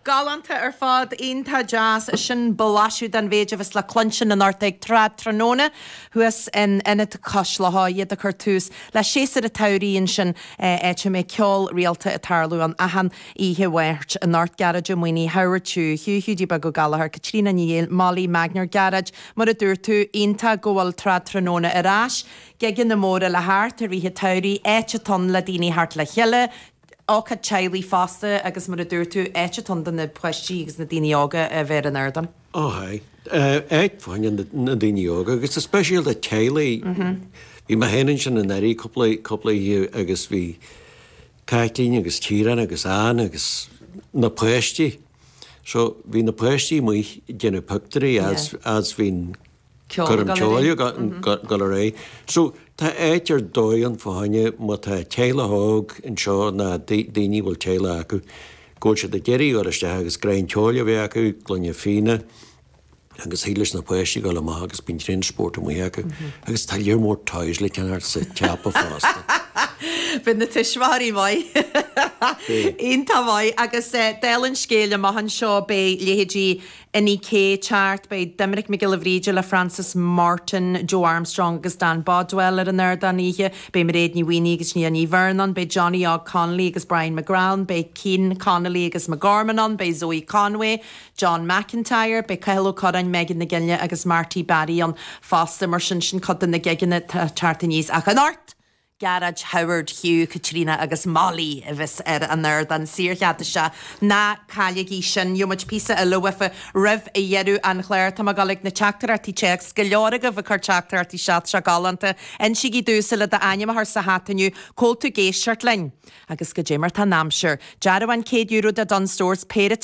Galánta ar fad, iontach deas. Sin blaiseadh den mhéid a bheas le cluinstin anocht ag Trad Tráthnóna thuas in Ionad Cois Locha, iad ag cur tús le séasúr an tsamhraidh ansin, áit a mbeidh ceol rialta ag tarlú ann achan oíche Mháirt. Anocht, Gearóid Ó Maonaigh, Howard Chu, Hugh Hiúdaí Beag Ó Gallachóir, Caitríona Ní Bhaoill, Mollie Magner, Gearóid, Mar a dúirt tú, iontach go bhfuil Trad Tráthnóna ar ais, gigeanna móra le theacht i rith an tsamhraidh, áit atá ann le daoine theacht le chéile, Ócáid teaghlaigh fosta agus, mar a dúirt tú, áit atá do na páistí agus na daoine óga a bheith ar an ardán. Ó haigh. Áit fá choinne na daoine óga agus go speisialta teaghlaigh. Bhí mé féin ansin anuraidh cúpla, cúpla oíche agus bhí Caitlín agus Ciarán agus Ann agus na páistí. So bhí na páistí amuigh ag déanamh pictiúirí agus bhí an. Coirm ceoil ag dul ar aghaidh. So, tá áit ar dóigh ann fá choinne má tá teaghlach óg anseo ná daoine a bhfuil teaghlach acu, go bhfuil siad ag iarraidh a dhul isteach agus greim ceoil a bheith acu, gloine fíona agus thig leis na páistí dhul amach agus bíonn tréan spóirt amuigh acu. Agus tá lear mór toys le ceannacht sa tsiopa fosta. Bíonn na tuismitheoirí maith, iontach maith agus dála an scéil amach anseo, beidh leithéidí Inni-K ag teacht, beidh Doimnic Mac Giolla Bhríde le Frances Morton, Joe Armstrong agus Dan Bodwell ar an ardán oíche. Beidh Mairéad Ní Mhaonaigh agus Nia Ní Bheirn ann. Beidh Johnny Óg Connolly agus Brian McGrath ann. Beidh Cian Connolly, Fergus McGorman ann. Beidh Zoë Conway, John McIntyre, beidh Cathal Ó Curráin, Megan McGinley agus Marty Barry ann fosta. Mar sin, sin cuid de na gigeanna atá ag teacht aníos. Ach anocht Gearóid, Howard, Hugh, Caitríona agus Molly a bheas ar an ardán saorchead isteach. Ná cailligí sin. Gheobhaimid píosa eile uafa roimh dheireadh an chláir. Tá mé ag dul ag na teachtaireachtaí téacs. Go leor agaibh ag cur teachtaireachtaí isteach, seo galánta. Insígí domhsa le d'ainm a chur sa hata inniu cá bhfuil tú ag éisteacht linn. Agus goidé mar atá an aimsir. Dearbhán €100 do Dunnes Stores, péire.